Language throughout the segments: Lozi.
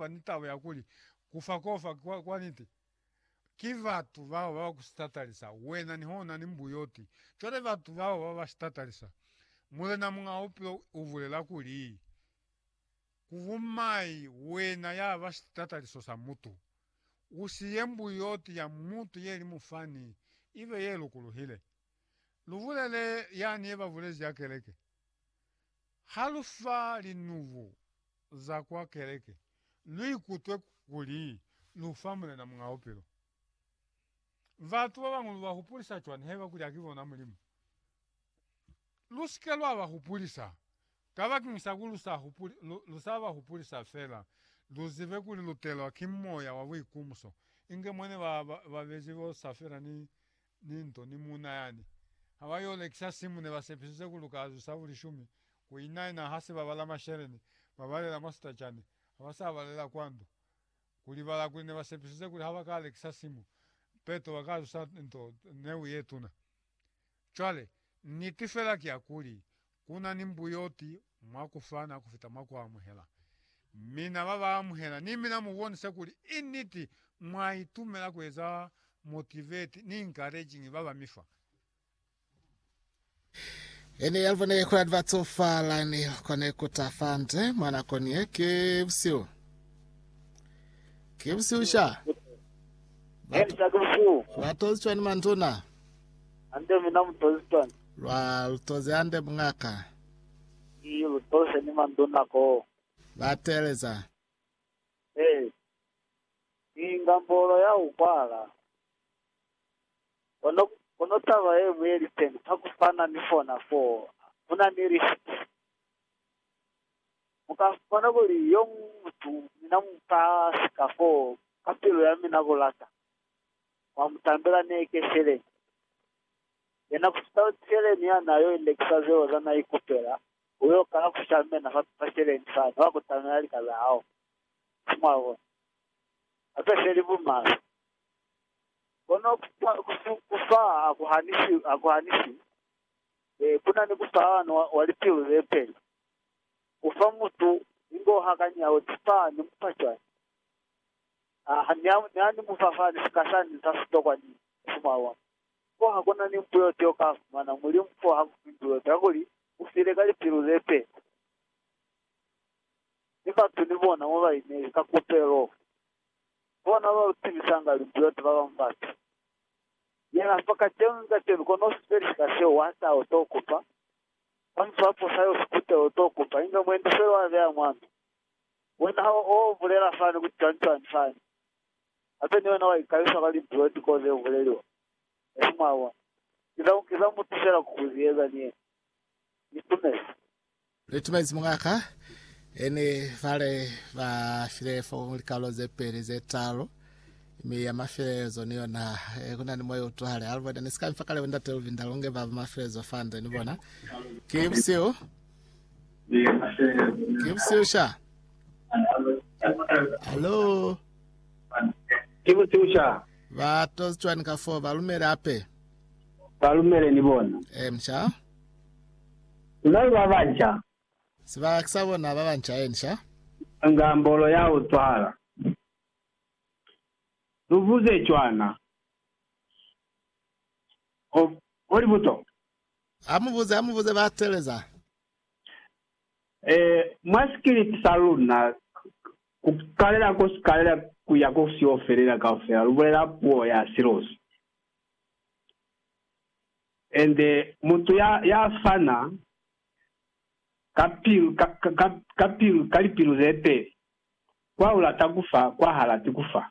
ba ni taba ya kuli, Ku fa kofa kwa, kwa niti. Ki batu bao ba ba ku sitatalisa wena nihona ni mbuyoti. Cwale batu bao ba ba sitatalisa. Mulena Muñaa Bupilo u bulela kuli, Ku bu mai wena ya ba sitatalisiso sa mutu! U siye mbuyoti ya mutu ye li mufani i be ye lukuluhile. Lu bulele yani ye ba bulezi ya keleke. Ha lu fa linubu za kwa keleke, lu ikutwe kuli lu fa Mulena Muñ'a Bupilo. Batu ba bañwi lu ba hupulisa cwani haiba kuli ha ki bona Mulimu? Lu si ke lwa ba hupulisa kabakeñi sa kuli lu sa hupuli, lu, lu sa ba hupulisa fela. Lu zibe kuli lu telwa ki moya wa buikumuso, inge mwa ne ba, ba, ba bezi bo Safira ni ni nto ni muuna yani. Ha ba yo lekisa simu ne ba sepisize ku luka azu sa bulishumi ku ina ina ha se babala masheleni ba balela mwa sitacani ha ba sa balela kwa ndu. Ku libala kuli ne ba sepisize kuli ha ba ka lekisa simu peto ba ka zusa nto neu ye tuna. Cwale, niti fela ki ya kuli, Ku na ni mbuyoti mwa ku fana ku fita mwa ku amuhela. Mi na ba ba amuhela ni mina mu bonisa kuli i niti mwa itumela ku eza motivate ni encouraging ba ba mi fa. E ne ya lu bonile kuli ba tsofala ni kone ku ta fa nde mwa nako ni ye. Ki busihu. Ki busihu sha. Ba to, ba tozwi cwani manduna? Hande mina mutozi Tony. Lwa lutozi hande mungaka. Ki lutoze ni manduna koo. Ba teeleza. Hee. Ni inga mbolo ya ku kwala. Kono, kono taba ye ñwi ye li teñi, ka ku fana ni fona foo, ku na ni lifti. Mu ka bona kuli yo muñwi mutu, mina mu ka sika foo, ka pilu ya mina ku lata. mwa mutambela ne ke Seleni. Yena kusita Seleni ya na yo ilekisa zeo za na ikupela, u yo kala ku shamena fa fa Seleni fani wa kutamela lika za hao. Si mwa bona? Hape se li bumaswe. Kono kufa, kufu, kufa ha ku hanisi, ha ku hanisi. E, ku na ni kufahalano wa, wa lipilu ze peli. U fa mutu ingo ha kanyao tipani mupa cwani. Ha, ha, ne, ne ani mu fa fani, sika sani sa sitokwa ni musumalo wa mwa. Fo ha kuna ni mpu yote yo ka fumana, Mulimu fo ha kufi mpu yote, kakuli U file ka lipilu ze peli. Mi batu ni bona mo ba inezi, ka kupelo. Bona ba tibisanga limpu yote, ba bañwi batu. Yena fa kacenu ni kacenu, kono u si peli sika seo, wa taha, u to kupa. Kamuf'apo sa yo sikute, u to kupa, inge mwendi fela wa beya mwa mi, Wena ha o bulela fani ku cwani-cwani fani, hape ni wena wa ikalisa kwa linzwi o tiko ze buleliwa, esi mwa bona. Ki za, ki za mutu fela ku ku zieza ni yena. Ni tumezi. Ni tumezi muñ'a ka, e ni bale ba file fo likalolo ze peli, ze talu, mi ya mafelelezo ni yona, e, ku na ni moya o tuhale. Alvord, ni si ka mi fa kale bo Ndate Luvinda, lu nge ba ba mafelelezo fa nde ni bona. Ki busihu. Ke busesha. Hello. Ke busesha. Ba tozi cwani ka fo ba lumele ape. Ba lumele ni bona. Eh msha. Nai ba banca. Siba kisa bona ba banca eh nsha. Nga mbolo ya ho tswala. Luvuze cwana. O, o libuto. Amubuze, amubuze ba teleza. Eh, mwa sikiliti sa luna, ku kalela ko sikalela ku ya ko siyo felela kaufela, lu bulela puo ya silozi. Ende mutu ya, ya fana ka pilu, ka, ka, ka, ka pilu, ka lipilu ze peli, kwa ulata kufa, kwa halati kufa.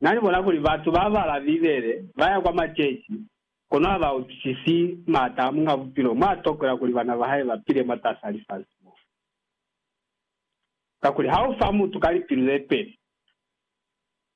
Na ni bona kuli batu ba bala Bibele, ba ya kwa maceci, kono ha ba utwisisi maata a Muñ'a Bupilo mo a tokola kuli bana ba hae ba pile mwatas'a lifasi mo. Kakuli ha u fa mutu ka lipilu ze peli,